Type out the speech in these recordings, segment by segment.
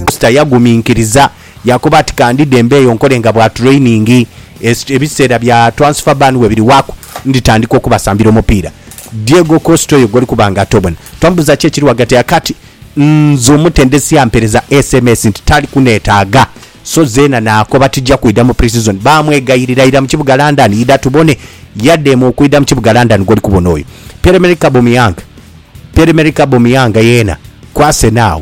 Kusita yaguminkiriza yakoba ati ka ndidhe mbeeyo nkole nga bwa training ebiseera bya transfer ban we biriwaku nditandika okubasambira omupiira. Diego Costa oyo gwoli kuba nga tobona twamubuuza ki ekiri ghagati ya kati nze omutendesi yampereza sms nti tali kunetaaga so zeena naakoba tija kwidha mu pre-season baamwegayirira ira mu kibuga London idha tubone yadheema okwidha mu kibuga London gwoli kubona oyo Pierre-Emerick Aubameyang Pierre-Emerick Aubameyang yeena ku Arsenal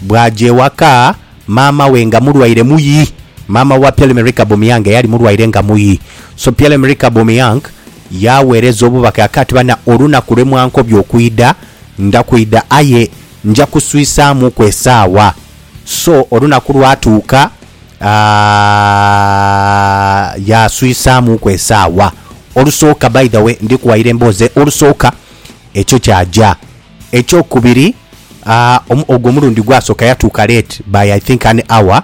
Bwaaja ewaka, maama we nga mulwaire muyi. Maama wa Pierre Emerick Aubameyang eyali mulwaire nga muyi. So Pierre Emerick Aubameyang yaaweereza obubaka yaka ati, Bana, olunaku lwe mwankobya okwidha, nda kwidha, aye nja kuswisaamuuku esaawa. So olunaku lwatuuka, yaaswisaamuuku esaawa. Olusooka, by the way, ndi kuwayira emboozi, olusooka ekyo kyaja. Ekyokubiri ogwo omulundi gwasooka yatuuka late by I think an hour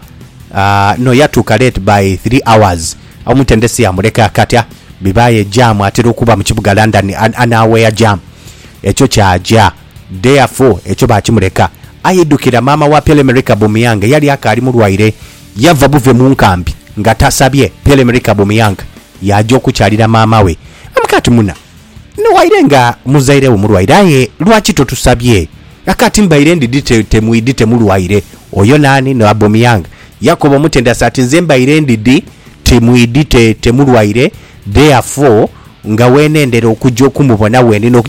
no yatuuka late by three hours omutendesi yamuleka akatya bibaaye jam atera okuba mu kibuga London anawhere jam ekyo kyaja therefore ekyo baakimuleka aidukira maama wa Pierre-Emerick Aubameyang eyali akaali mulwaire yava buve mu nkambi nga tasabye Pierre-Emerick Aubameyang yaaja okukyalira maama we I'm Kati muna. Ni waire nga muzaire wo mulwaire aye lwaki totusabye? Akati mbaire ndidi temwidi temulwaire. Oyo naani? Ni Abomeyang. Yakobo omutende asa ati nze mbaire ndidi timwidi te temulwaire therefore nga wenendera okuja okumubona wendi nokuja.